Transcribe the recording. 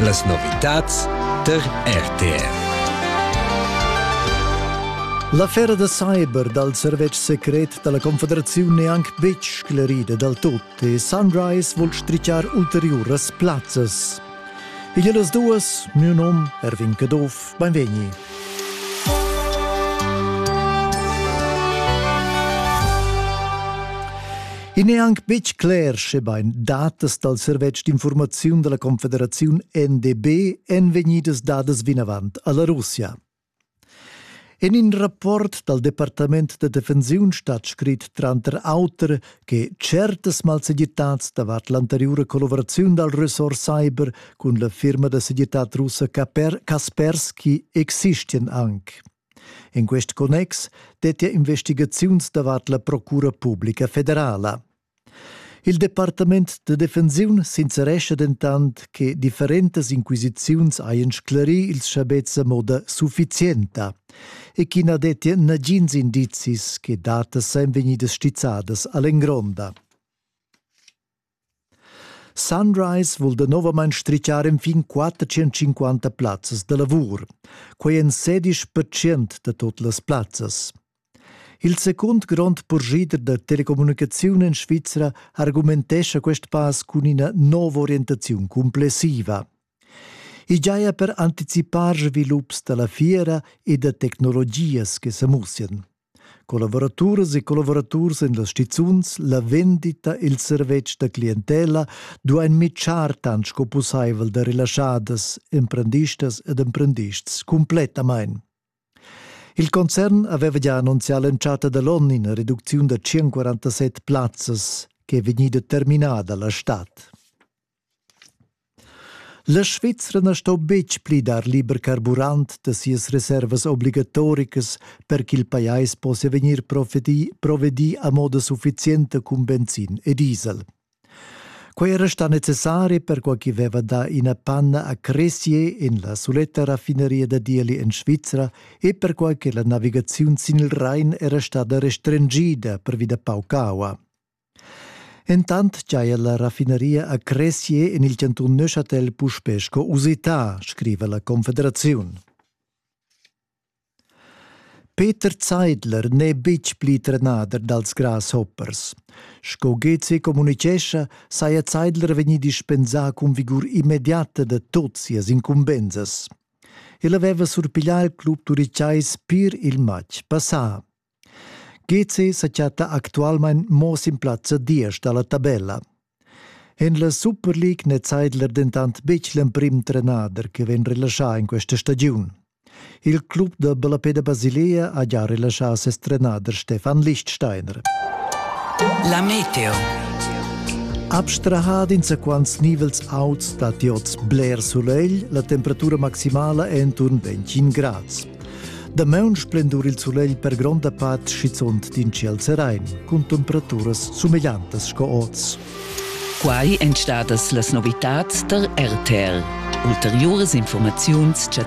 Las novitads tar RTR. L'affera da cyber dal servetsch secret da la Confederaziun n'è anc betg sclerida dal tut e Sunrise vul strichar ulteriuras plazzas. Igl las duas, miu nom Erwin Caduff, beinvegni. I n'è anc betg cler, schebain datas dal servetsch d'infurmaziun da la Confederaziun NDB èn vegnidas dadas vinavant a la Russia. En in rapport dal Departament da defensiun stat scrit tranter auter che certas malsegirtads davart l'anteriura collavuraziun dal ressort cyber cun la firma da segirtad russa Kaspersky existian anc. En quest connex dettia investigaziuns davart la Procura publica federala. Il departament da defensiun sincerescha dentant che differentas inquisiziuns hajan sclarì ils schabets a moda suffizienta e ch'i na dettia nagins indizis che datas sajan vegnidas stizzadas a l'engronda. Sunrise vul danovamain stritgar enfin 450 plazzas da lavur, quai en sedisch percent da tut las plazzas. Il secund grond purschida da telecommunicaziun en Svizra argumentescha quest pass cun ina nova orientaziun cumplessiva. I giaja per anticipar svilups da la fiera e da tecnologias che sa mussian. Collavuraturas e collavuraturs en las stizuns, la vendita e il servetsch da clientela duain mitschar tant sco pussaivel da relaschadas, emprendistas ed emprendists cumplettamain. Il concern aveva gia annunzià l'entschatta da l'onn ina reducziun da 147 plazzas che è vegnida terminada la stad. La Svizra na sto betg pli dar liber carburant da sias reservas obligatoricas per ch'il pajais possia vegnir provedì, provedì a moda suffizienta cun benzin e diesel. Quai era stà necessari perquai ch'i veva dà ina panna a Cressier en la suletta raffineria da Dieli en Svizra e perquai che la navigaziun sin il Rain era stada restringida pervi da pauc aua. Entant giaja la raffineria a Cressier en il chantun Neuchâtel puspè sco usità, scriva la Confederaziun. Peter Zeidler n'è betg pli trenader dals grasshoppers. Sco Gezi communitgescha, saja Zeidler vegnì dispensà cun vigur immediata da tot sias incumbensas. El aveva surpiglià il club turicais pir il matg passà. GC sa chatta actualmain mo sin plazza diesch da la tabella. En la Super League n'è Zeidler dentant betg l'emprim trenader che vegn relaschà in questa stagiun. Il club da Ballapeda Basilea ha già relaschà ses trenader Stefan Lichtsteiner. La Meteo. Abstrahad insaquants nivels auts datti oz bler sulegl, la temperatura maximala è enturn 25 grads. Damaun splendur il sulegl per gronda part schizunt d'in ciel serain, cun temperaturas sumegliantas sco oz. Quai èn stadas las novitads da RTL. Ulteriuras informaziuns chattas